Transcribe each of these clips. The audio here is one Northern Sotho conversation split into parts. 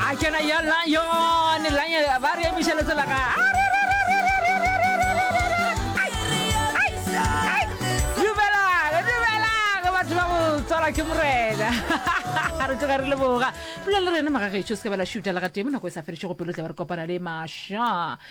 a kena ya lion lion ba re emiša letsela ga dumelang dumelang batho ba go tswala ke morena re tsoga re leboga pula le rena magagetšo se ka ba la šuta le ga tee mo nako e sa fedišego pelo tla ba re kopana le maša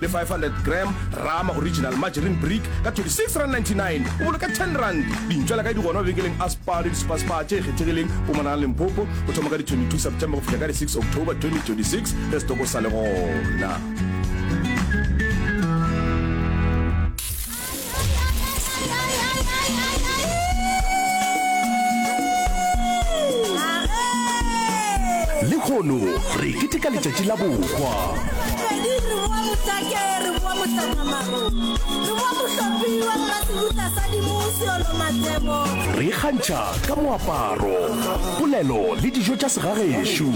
le 500 gram rama original margarine brick ka 26 rand 99 o boloka 10 rand dintšwa la ka di gona mabenkeleng a spa le dispaspa tše kgethegileng o monana lempopo o thoma ka di 22 september go fihla ka di 6 october 2026 re setoko sa le gona lehono re keteka letšatši la bokwa re ikgantšha ka moaparo polelo le dijo tša segagešo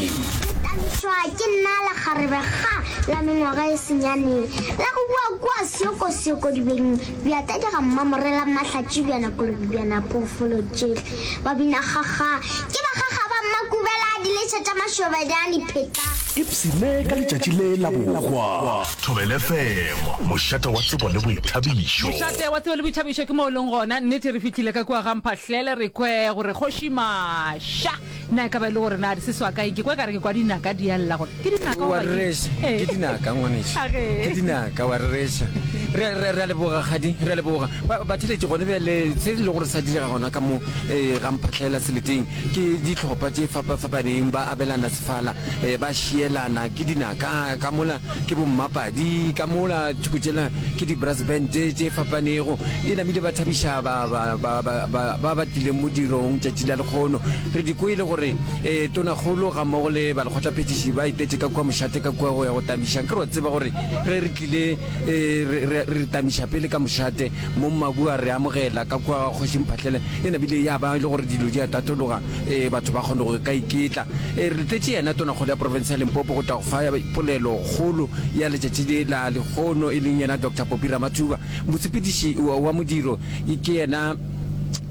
la mengwaga e senyane la go bua kua seokosioko dibeng bja tadega mmamorela mahlatši bja nakolobi bja napoofolo tšehle ba bina kgakga ke bakgakga ba mmakubela diletša tša mašobede a dipheta Ipsine ka letšatši le la bohwa. Thobel FM, mošate wa tsebo le boithabišo. Mošate wa tsebo le boithabišo ke mo o leng gona. Nnete re fihlile ka kua ga Mphahlele re kwe gore kgoši Masha. Na e ka ba e le gore na di se swa kae? Ke kwa ekare ke kwa dinaka di a lla gore ke dinaka goba ke rereša ke Ee. dinaka ngwaneša A ge. ke dinaka wa rereša re re- re a leboga kgadi re a leboga Ba- batheletši gone bjale se e le gore sa direga gona ka mo eh, ga mphatlhaela seleteng ke ditlhopha tše fapafapaneng ba abelana sefala eh, ba šielana ke dinaka ka mola Ke bommapadi ka mola thoko tšela ke di-brass band tše tše fapanego. E namile ba thabiša ba ba ba ba ba ba ba tlileng modirong tšatši la lekgono. Re di kwele gore eh, Tonakgolo gammogo le balekgotlaphethiši ba itetše ka kua mošate ka kua go ya go tamiša. Nke re wa tseba gore ge re tlile eh, re, re, re tamiša pele ka mošate, Mong Mabu a re amogela ka kua ga Kgoši Mphahlele. E namile ya ba e le gore dilo di a tatologa. e batho ba kgone go ka iketla e re tletše yena tonakgolo ya porofense ya limpopo go tla go fa polelo kgolo ya letšatši le la lekgono e leng yena dr popi ramathuba mosepediši wa modiro ke yena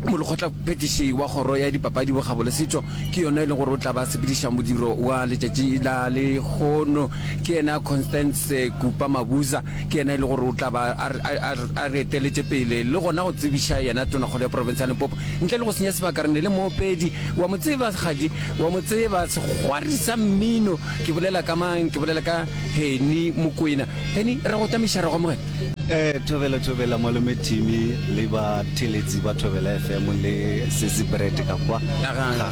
molekgotla phetiši wa kgoro ya dipapadi bokgabo le setšo ke yona e leng gore o tla ba sepediša modiro wa letšatši la lekgono ke yena constance kupa mabuza Ke yena e le gore o tla ba a re, a, a, a re eteletše pele, le gona go tsebiša yena Tonakgolo ya Profense ya Limpopo. Ntle le go senya sebaka, re ne le moopedi, wa mo tseba, kgadi, wa mo tseba, segwari sa mmino. Ke bolela ka mang? Ke bolela ka Henny Mokwena. Henny, re a go otamisa, re a go amogela. Ee, thobela, thobela, Malome Timmy le batheeletsi ba Thobela FM le Sesi Bread ka kwa. Ga, ga,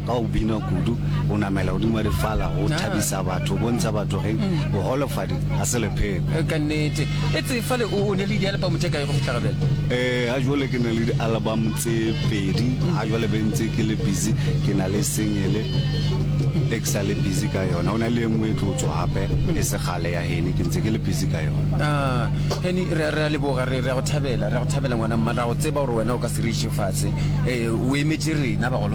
Ka go bina kudu, go namela godimo ga difala, go thabisa batho, go bontšha batho ge boholofadi ga se lepheko. Ka nnete. Etse fale o ne le dialebamo tše kae go fihla ga bjale? Ee, ga jwale ke na le dialebamo tse pedi. Ga jwale be ntse ke le busy, ke na le singele e ke sa le busy ka yona. Go na le e nngwe e tlo tšwa gape e se kgale ya Henny, ke ntse ke le busy ka yona. Aa, Henny, re a, re a leboga, re, re a go thabela, re a go thabela ngwana mma. Re a go tseba gore wena o ka se re iše fase. Ee, o emetše rena bagolo.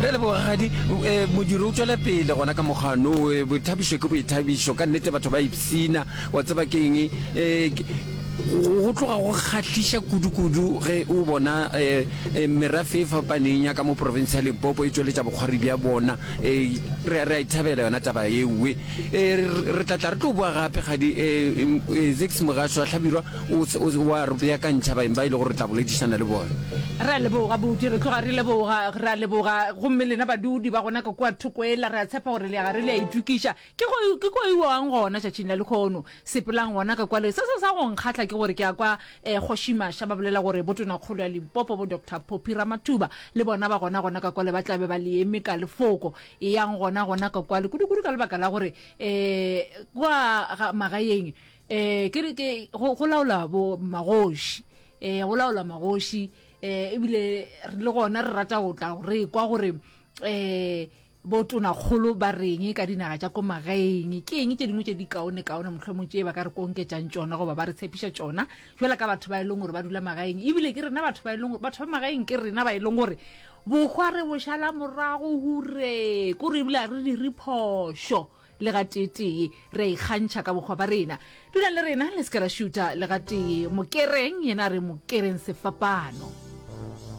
Re a leboga rakgadi. E, modiro o tšwela pele gona ka mokgwano. E, boithabišo ke boithabišo ka nnete, batho ba ipsina. Wa tseba ke eng? E, go tloga go kgahliša kudu-kudu ge o bona e, e, merafe e fapaneng ya ka mo profense ya Limpopo e tšweletša bokgwari bja bona. E, re, re a ithabela yona taba ewe. E, re tla tla re tlo boa gape kgadi. E, e, Zix Mogashoa Hlabirwa. O se o wa re beakantšha baeng ba e lego re tla boledišana le bona. Re a leboga, Booki. Re tloga re leboga. Re a leboga. Gomme lena badudi ba gona ka kua thoko ela, re a tshepa gore le a ga re le a itokiša. Ke go, ke go iwang gona tšatšing la lekhono? Sepelang gona ka kwale. Se se sa go nkgahla ke gore ke a kwa eh, Kgoši Masha ba bolela gore Botonakgolo ya Limpopo, bo Doctor Poppy Ramathuba, le bona ba gona gona ka kwale, ba tla be ba le eme ka lefoko. Eyang gona gona ka kwale, kudukudu ka lebaka la gore eh, kwa ga, magaeng, eh ke re ke go go laola bo magoši eh go laola magoši eh ebile re le gona re rata go tla re kwa gore eh bo tona kgolo ba reng ka dinaga tša ko magaeng ke eng tše dingwe tše di kaone kaone mohlwe mo tše ba ka re konketsang tšona goba ba re tshepiša tšona jela ka batho ba e leng gore ba dula magaeng ebile ke rena batho ba e leng gore batho ba magaeng ke rena ba e leng gore bokgwa re bošala morago hure ko re ebile a re di re phošo Le gateetee re a ikgantšha ka bokgwa ba rena. Dulang le rena, le se ke la šuta le gatee. Mokereng, yena a re, Mokereng sefapano.